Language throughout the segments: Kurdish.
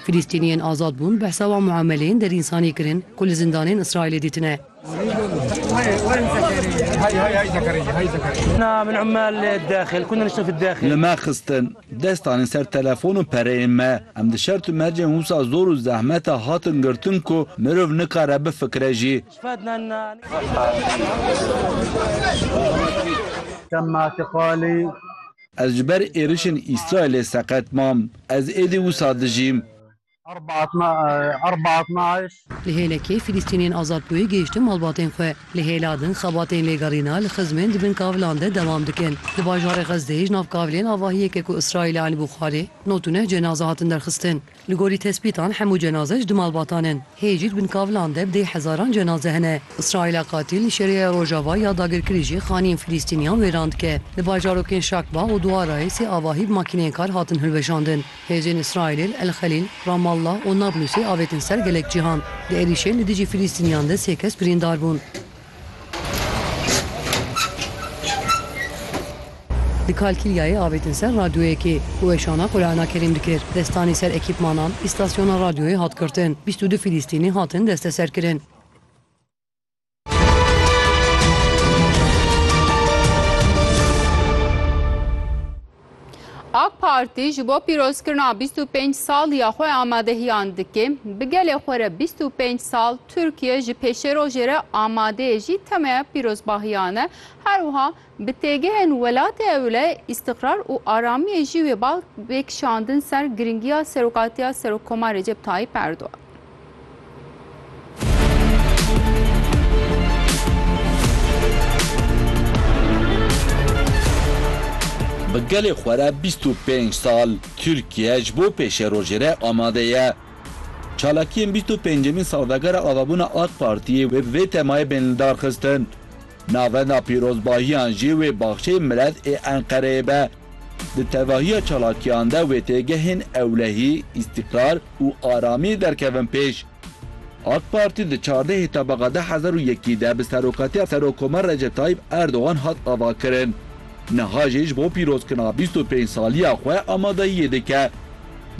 Filîstîniyên azad bûn behsa wan muameleyên derînsanî kirin ku li zindanên Îsraîlê dîtine. Li me xistin, dest danîn ser telefon û pereyên me. Em di şert û mercên wisa zor û zehmete hatin girtin ku mirov nikare bifikire jî. Ez ji ber êrişên Îsraîlê seqet mam. Ez êdî wisa dijîm. Li hêlekê Fîlîstîniyên Azadbûyî gihîştin malbatên xwe. Li hêla din xebatên lêgerîna li xizmên di bin kavilan de dewam dikin. Di bajarê Xezdeyê ji nav kavilên avahiyeke ku Îsraîlê anîbû xwarê, notûneh cenaze hatin derxistin. Li gorî tespîtan hemû cenaze ji di malbatan in. Hê jî di bin kavilan de bi dê hezaran cenaze hene. Îsraîla qatîl li Şeriya Rojava ya dagirkirî jî xanîyên Filîstîniyan wêran dike. Li bajarokên Şakba û Duarayê sê avahî bi makîneyên kar hatin hilweşandin. Hêzên Îsraîlê li El Xelîl, Ramallah û Nablusê avêtin ser gelek cîhan. Di êrîşên li dijî Filîstîniyan de sê kes birîndar bûn. Di Kalkîlyayê avêtin ser radyoyekê ku weşana Qurana Kerîm dikir. Destanî ser ekîpmanan îstasyona radyoyê hat girtin. Bîst û du Filîstînî hatin desteserkirin. Ak Partî ji bo pîrozkirina bîst û pênc sal ya xwe amadehiyan dike. Bi gelê xwe re bîst û pênc sal Tirkiye ji pêşerojê re amade ye jî temeya pîrozbahiyan e. Her wiha bi têgihên welatê ewle îstiqrar û aramiyê jî wê bal bê kişandin ser girîngiya serokatiya Serokkomar Recep Tayyîp Erdogan. Bi gelê xwe re bîst û pênc sal Tirkiye ji bo pêşerojê re amade ye. Çalakiyên bîst û pêncemîn salvegera avabûna AK Partiyê wê bi vê temayê bên li dar xistin. Navenda pîrozbahiyan jî wê baxçeyê Miled ê Enqereyê be. Di tevahiya çalakiyan de wê têgehên ewlehî, îstîkrar û aramî derkevin pêş. AK Partî di çardehê Tebaqa du hezar û yekî de bi serokatiya Serokkomer Recep Tayyîp Erdogan hat avakirin. Niha jî ji bo pîrozkirina bîst û pênc saliya xwe amadeyiyê dike.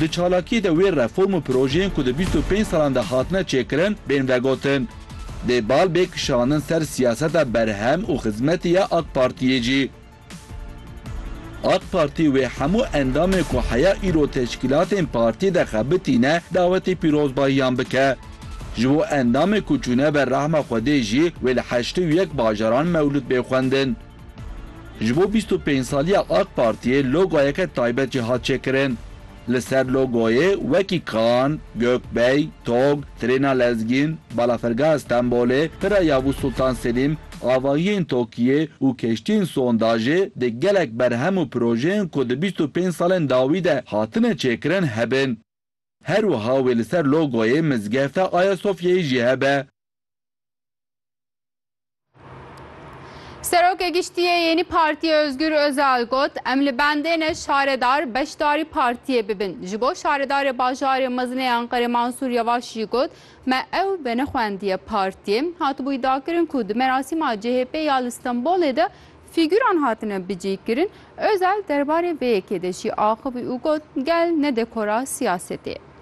Di çalakiyê de wê reform û projeyên ku di bîst û pênc salan de hatine çêkirin bên vegotin. Dê bal bê kişandin ser siyaseta berhem û xizmetê ya AK Partiyê jî. AK Partî wê hemû endamên ku heya îro teşkîlatên partî de xebitîne dawetê pîrozbahiyan bike. Ji bo endamên ku çûne ber rehma Xwedê jî wê li heştê û yek bajaran mewlûd bê xwendin. Ji bo bîst û pênc saliya AK Partiyê logoyeke taybet jî hat çêkirin. Li ser logoyê wekî Kan, Gökbey, Tog, Trêna Lezgîn, Balafirgeha Stenbolê, Pira Yavuz Sultan Selîm, Avahiyên Tokiyê û Keştiyên Sondajê dê gelek berhem û projeyên ku di bîst û pênc salên dawî de hatine çêkirin hebin. Her wiha wê li ser logoyê Mizgefta Ayasofyayê jî hebe. Serokê Giştiyê Yênî Partiyê Ozgur Ozal got, Em li bendê ne şaredar beşdarî partiyê bibin. Ji bo şaredarê bajarê mezinê Enqerê Mansûr Yevaş jî got, Me ew venexwendiye partiyê. Hatibûyî dakirin ku di merasîma CHP'ê ya li Stenbolê de fîgûran hatine bicihkirin. Ozal derbarê vê yekê de jî axivî û got, Gel ne dekora siyasetê ye.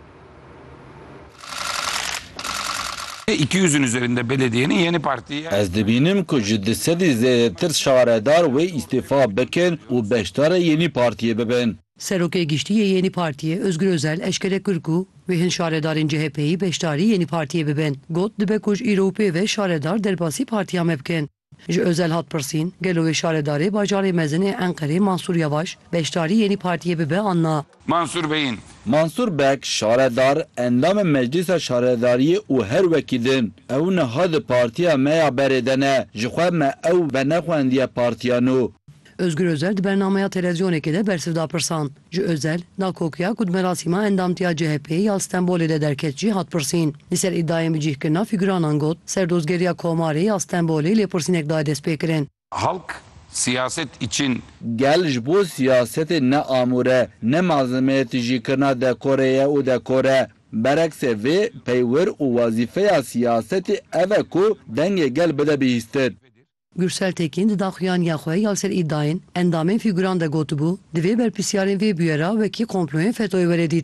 Ez dibînim ku ji du sedî zêdetir şaredar wê îstîfa bikin û beşdarê Yenî Partiyê bibin. Serokê Giştî yê Yenî Partiyê Ozgur Ozel eşkere kir ku wê hin şaredarên CHPyî beşdarî Yenî Partiyê bibin. Got, Dibe ku ji îro û pê ve şaredar derbasî partiya me bikin. Ji Ozel hat pirsîn, gelo wê şaredarê bajarê mezin ê Enqerê Mansûr Yavaş beşdarî yê nî partiyê bibe an na. Mansûr Beyin. Mansûr Beg, şaredar, endamê Meclîsa Şaredariyê û her wekî din. Ew niha di partiya me ya berê de ne. Ji xwe me ew venexwendiye partiya nû. Ozgur Ozel di bernameya televizyonekê de bersiv da pirsan. Ji Ozel, Nakokiya ku di merasîma endamtiya CHP'ê ya li Stenbolê de derket jî hat pirsîn. Li ser îdayên bi cîhkirina fîguranan got, Serdozgeriya Komarê ya Stenbolê lêpirsînek daye destpêkirin. Halk siyaset için. Gel ji bo siyasetê ne amûr e, ne malzemeyê tijîkirina dekorê ye û dekor e. Bereksê vê, peywir û wezîfeya siyasetê ev e ku dengê gel bide bihîstin. Gursel Tekin di daxuyaniya xwe ya li ser îdayên endamên fîguran de gotibû, Divê berpirsyarên vê bûyera wekî komployên FETÖ'yê were dîtin.